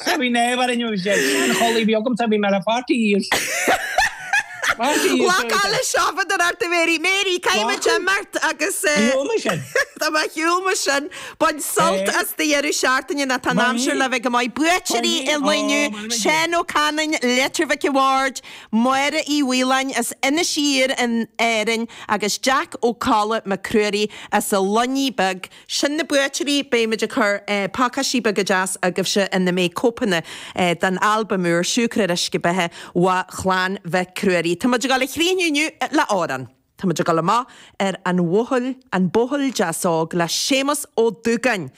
Sorry Naomh ar inniu is deir seanchollaí bhí agamsa bhí mé le pháirtí dhíobh. Pháirtí dhíobh Lá dúirt sé. calla seofa don Arta Mary. Mary, caithfidh muid Lá. imirt agus eh, Shiúl mé sin. tá mé shiúl mo sin. Bain sult Eh. as do dheireadh seachtaine ná tá an Bain. aimsir le bheith go maith. Buaiteoirí Bain. i Ó, Luinneadh, bain mé. Seán Ó Canainn, Leitir Mhic Ward, Máire Uí Mhaoláin as Inis Oírr in Éirinn agus Jack Ó Colla Mac Cruairí as a Luinní Beag. Sin na buaiteoirí, beimid ag cur pácáistí beaga deas agaibhse ina mbeidh cóipeanna den albam úr, Siúcra ar Uisce Beatha ó Chlann Mhic Ruairí. Tá muid ag dul a chríochnú inniu le amhrán. Tá muid ag dul amach ar an an Buachaill Deas Óg le Séamus Ó Dúgáin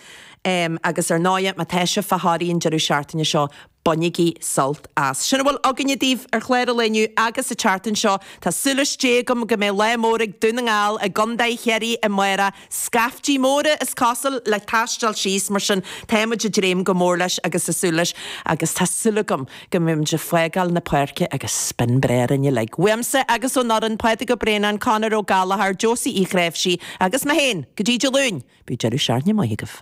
agus ar ndóighe, má tá sibh fá Thrá Lí an deireadh seachtaine seo, Bainigí sult as. Sin a bhfuil againne daoibh ar chlár an lae inniu agus an tseachtain seo. Tá súil as Dia agam go mbeidh lámh in uachtar ag Dún na nGall i gContae Chiarraí amárach. Scaiftí móra is cosuil le taisteal síos mar sin tá muid ag dréim go mór leis agus ag súil leis agus tá súil agam go mbeidh muid ag fágáil na páirce agus spion breá orainn uilig. Uaimse agus ón fhoireann, Pádraig Ó Braonáin, Conor Ó Gallchóir, Josie Uí Ghréimhsí agus mé féin, go dtí Dé Luain, bíodh deireadh seachtaine maith agaibh.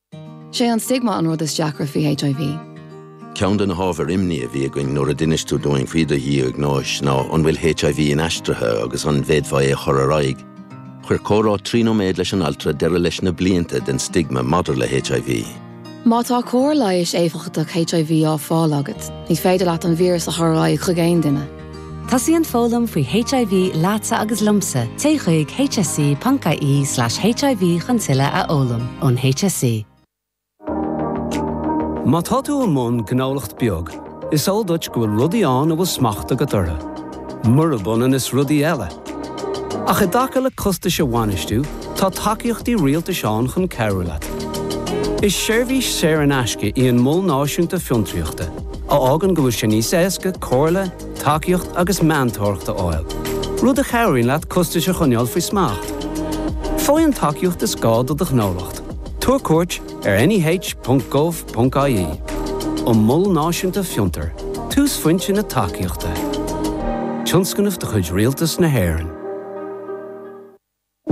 'Sé an stigma an rud is deacra faoi HIV. Ceann de na hábhair imní a bhí againn nuair a d'inis tú dúinn faoi do dhiagnóis ná an bhfuil HIV inaistrithe agus an bhféadfá é a chur ar aghaidh. Chuir comhrá trí nóiméad leis an altra deireadh leis na blianta den stigma maidir le HIV. Má tá cóir leighis éifeachtach HIV á fáil agat, ní féidir leat an víreas a chur ar aghaidh chuig aon duine. Tosaíonn foghlaim faoi HIV leatsa agus liomsa, téigh chuig hse.ie/hiv chun tuilleadh a fhoghlaim ón HSE. Má tá tú i mbun gnólacht bheag, is eol duit go bhfuil rudaí ann a bhfuil smacht agat orthu. Murab ionann is rudaí eile, Ach i dtaca le costais a bhainistiú, tá tacaíochtaí rialtais ann chun cabhrú leat. Is seirbhís saor in aisce í an Mol Náisiúnta Fiontraíochta, a fhágann go bhfuil sé níos éasca comhairle, tacaíocht agus meantóireacht a fháil, rud a chabhraíonn leat costais a choinneáil faoi smacht. Faigh an tacaíocht is gá do do ghnólacht. Tabhair cuairt. ar NEH.gov.ie An Mol Náisiúnta Fiontar, túsphointe na tacaíochta, tionscnamh de chuid Rialtas na hÉireann.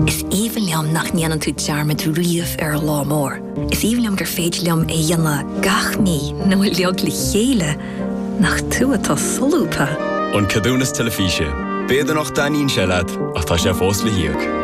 Is aoibhinn liom nach ndéanann tú dearmad riamh ar an lá mór. Is aoibhinn liom gur féidir liom é a dhéanamh gach mí nó uilig le chéile nach tú atá solúbtha. An Ceadúnas Teilifíse, B'fhéidir nach dtaitníonn sé leat ach tá sé fós le híoc.